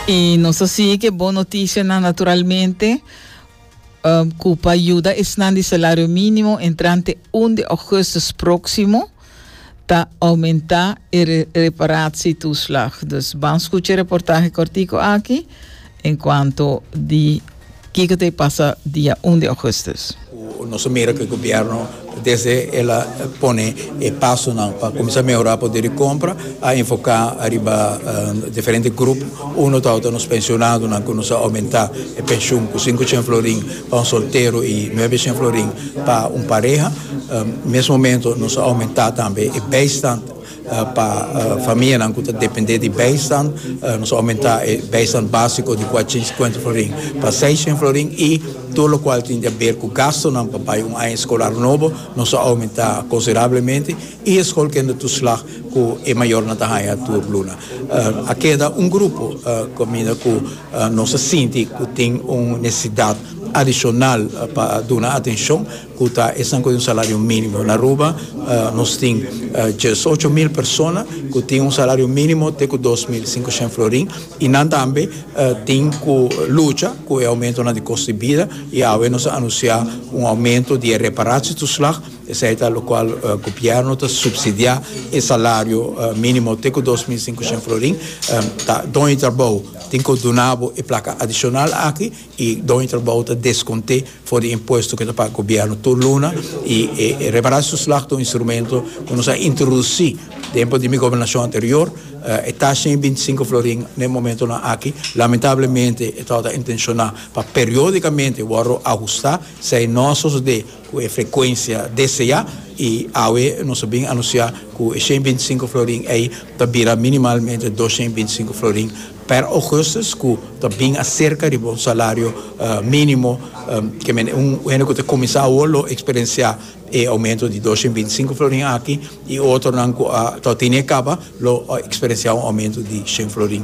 I nos a sigui ke bon notisianan naturalmente ku pa yuda esnan di salario mínimo entrante un di augustus próksimo ta oumentá e reparatsie toeslag. Dus ban skucha e reportahe kòrtiku aki. En cuanto di kico ta e pasa dia un di augustus. Cu nos a mira cu e gobierno desde el a pone e pasonan pa cuminsa mehora poder di compra a enfoca ariba diferente grupo. Uno tawata ta nos pensionadonan cu nos a aumenta e pension cu sinku cien florin pa un soltero y nuebe cien florin pa un pareha. Mes momento nos a aumenta tambe e bijstand. Pa famianan cu ta depende di bijstand nos a aumenta e bijstand basico di cuatrocientos y cincuenta florin pa seiscientos florin y tur locual tin di a ber cu gastonan pa bay un aña escolar nobo nos a aumenta considerablemente y e school kende toeslag cu e mayornan ta haya tur luna. A keda un grupo caminda cu nos a sinti cu tin un necesidad adicional pa duna atencion. Cu ta esnan cu tin un salario minimo? Na Aruba nos tin diesocho mil persona cu tin un salario minimo te cu dos mil sincoshen florin y nan tambe tin cu lucha cu e aumentonan di costo di bida y awe nos a anuncia un aumento di e reparatietoeslag esey ta locual gobierno ta subsidia e salario minimo te cu dos mil sincoshen florin ta doño di trabou tin cu duna bo e placa adicional aki. E doño di trabou ta descont'é for di impuesto cu e ta paga gobierno tur luna y e reparatoeslag ta un instrumento cu nos a introduci tempo di mi gobernacion anterior. E taxa di bintisinco florin n'e momentonan aki lamentablemente e tabata intenciona pa periodicamente wordo ahusta, esey no a sosode cu e frecuencia desea y awe nos a bin anuncia cu e ciento veinticinco florin ey ta bira minimalmente doscientos veinticinco florin. Per augustus ku ta bin aserka riba un salario minimo ke men un hende ku ta kuminsá awo lo eksperensiá e oumento di dos sien binti sinku florin aki i otronan ku a tabata ini a kaba lo eksperensiá un oumento di sien florin.